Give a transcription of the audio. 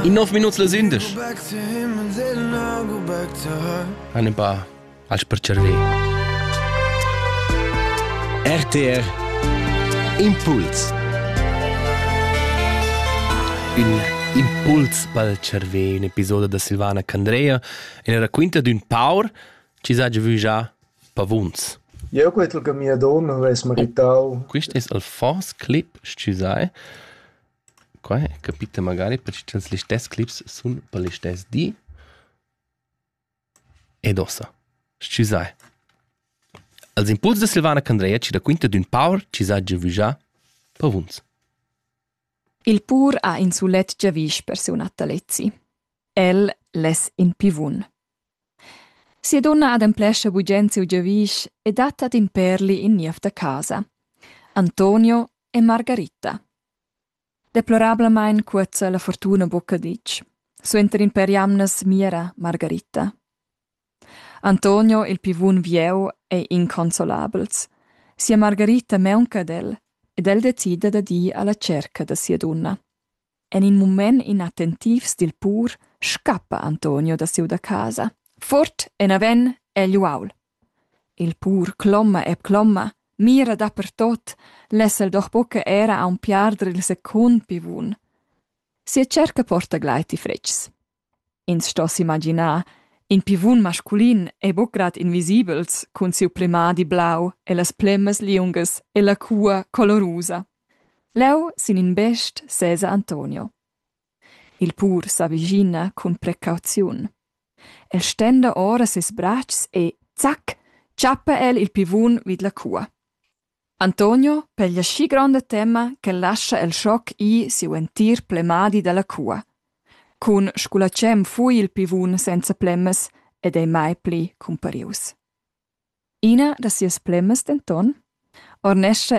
In nov minuts las indesch. Han ein pa als per cerver. RTR Impuls. Un impuls pel cerver, un episodio da Silvana Candrea, in raquinta d'un paur ci sa vu già pavuns. Eu quetl che mia donna avess meritau. Quist es el fors clip, scu sai. Quai capita magari perche cha'ns listess clips sun per listess di ed uossa. Schi sai. Als impuls da Silvana Candreia chi raquinta d'ün paur chi s'ha giavüschà pavuns. Il pur ha in sulet giavüsch per siu natalezi. El less in pivun. Sia dunna ademplescha bugen siu giavüsch e dat ad in perli in niev da casa. Antonio e Margarita, Deplorablamein cuozza la fortuna buca ditg. Suenter in per jamnas mira Margarita. Antonio, il pivun vieu, ei inconsolabels. Sia Margarita meunca ad el ed el decida da dir alla cerca da sia dunna. En in mument inattentivs dil pur scappa Antonio da siu da casa. Fort, enaven egl uaul. Il pur cloma e cloma, mira dapertot, less el doch buca era aunc piarder il secund pivun. Sia cerca porta gleiti fretgs. Ins sto s'imaginar, in pivun masculin e buc grad invisibels cun siu plemadi blau e las plemmas liungas e la cua colorusa. Leu sin in best sesa Antonio. Il pur s'avischina cun precauziun. El stenda ora ses bratschs e zac tschappa el il pivun vid la cua. Antonio peglia schi gronda tema ch'el lascha el schoc ir siu entir plemadi dalla cua. Cun sgulatschem fui il pivun senza plemmas ed ei mai pli cumparius. Ina da sias plemmas denton ornescha